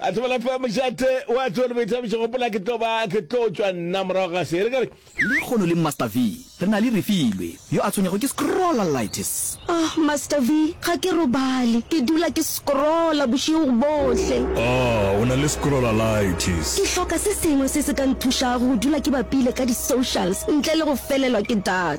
a tsebela fa mojate wa tsoe le boithabišo gopola ke tlo ba ke tlo tšwa nna morago ga se re ka re Lehono le Master V, re na le Refilwe, yo a tshwenyago ke scrollalitis. Oh, Master V, ga ke robale, ke dula ke scrolla bošego bohle. Oh, o na le scrollalitis. Ke hloka se sengwe se se ka nthušago go dula ke bapile ka di-socials ntle le go felelwa ke data.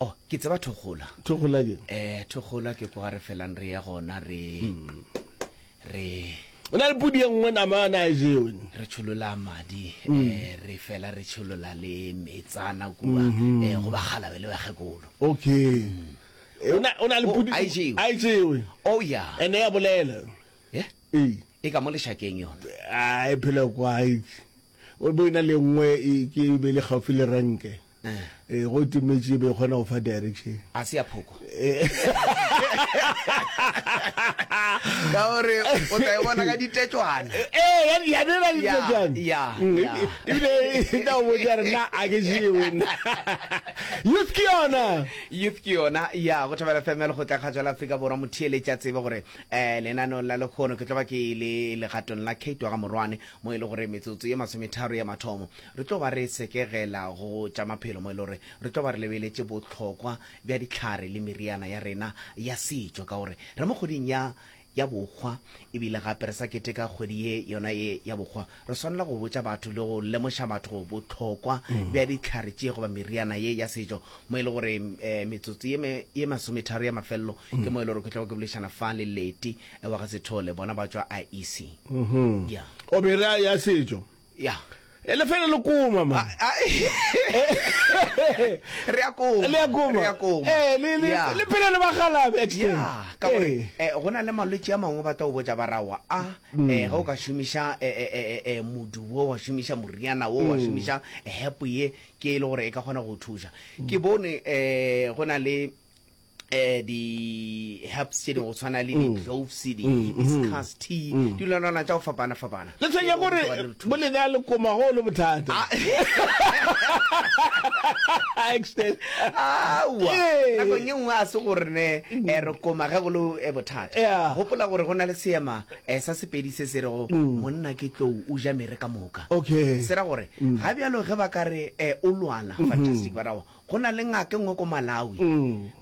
Oh, ke tseba Thokgola. Thokgola ke? Eh, Thokgola ke kwa re felang re ya gona re hmm. re O na le pudi ye nngwe nama ana a jewe. Re tsholola madi, hmm. eh re fela re tsholola le metsana kwa hmm. eh go ba galabe le bagekolo. Okay. Eh, ona ona le oh, pudi a jewe. A jewe. Oh yeah. Ene ya bolela. Yeah. Eh. E ka mo leshakeng yona. Ah, e phela kwa. O bo ina le nngwe e ke be le gaufi le ranke. Ee, go timetše e be e kgona go fa direction. A se ya phoko. Ka gore o tla e bona ka ditetšwana. Ee, ya ya ne na ditetšwana. Ya. Ebile e tla o botša re na a ke je wena. Youth ke yona. Youth ke yona. Ya, go thabela FM le go tla kgatšwa la Afrika Borwa motheeletša tsebe gore eh lenanong la lekgono ke tlo ba ke le legatong la Kate wa ga Morwane mo e le gore metsotso ye masometharo ya mathomo Re tlo ba re sekegela go tša maphelo mo e le gore re tlo ba re lebeletše bohlokwa bja dihlare le meriana ya rena ya setšo ka gore re mo kgweding ya ya bokgwa ebile gape re sa keteka kgwedi ye yona ye ya bokgwa. Re swanela go botša batho le go lemoša batho bohlokwa bja dihlare tše goba meriana ye ya setšo mo e le gore metsotso ye ye masometharo ya mafelelo ke mo e le gore ke tlago ke boledišana fa le Leti wa ga Sethole bona ba tšwa IEC. Obe re a ya setšo Ya. E le fela le koma ma. Ah, ah, re a koma. Le a koma. Re a koma. Eh, le le yeah. le phela le bagala extend. Yeah, ka gore eh, eh go na le malwetse a mangwe batla o botsa barawa a ah, mm. eh ga o ka shumisha eh, eh eh eh modu wo wa shumisha moriana wo wa mm. shumisha help ye ke e le gore e ka gona go thusa. Ke mm. bone eh go na le eh di herbs tše dingwe go tshwana le di cloves di hibiscus tea dilwanana tša go fapana fapana Ke tshwenya gore bo le nea lekoma go le bothata. Extend. aowa Ee. nakong ye nngwe a se gore ne eh, re koma ge go le eh, bothata Yeah. gopola gore go na le seema eh, sa sepedi se se rego monna ke tlou o ja mere ka moka Okay. se ra gore ga bjalo ge ba ka re eh, o lwana fantastic ba ra wa Go na le ngaka e nngwe ko Malawi.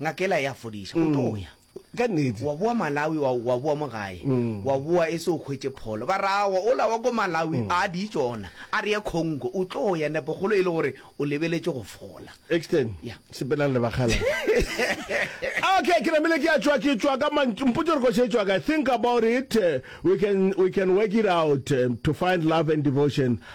Ngaka ela ya fodiša. O tlo ya. Ka nnete. Wa boa Malawi, wa, wa boa mo gae. Wa boa e se o hwetše pholo. Ba re, Aowa, ola wa ko Malawi, a di ye tšona. A re ye Congo. O tlo ya, nepokgolo e le gore o lebeletše go fola. Ekstein, Ya. sepelang le bakgalabje. Okay, ke namile ke a tšwa, ke tšwa ka mantšu. Mpotše gore kgoši e tšwa kae. Think about it. We can, we can work it out to find love and devotion.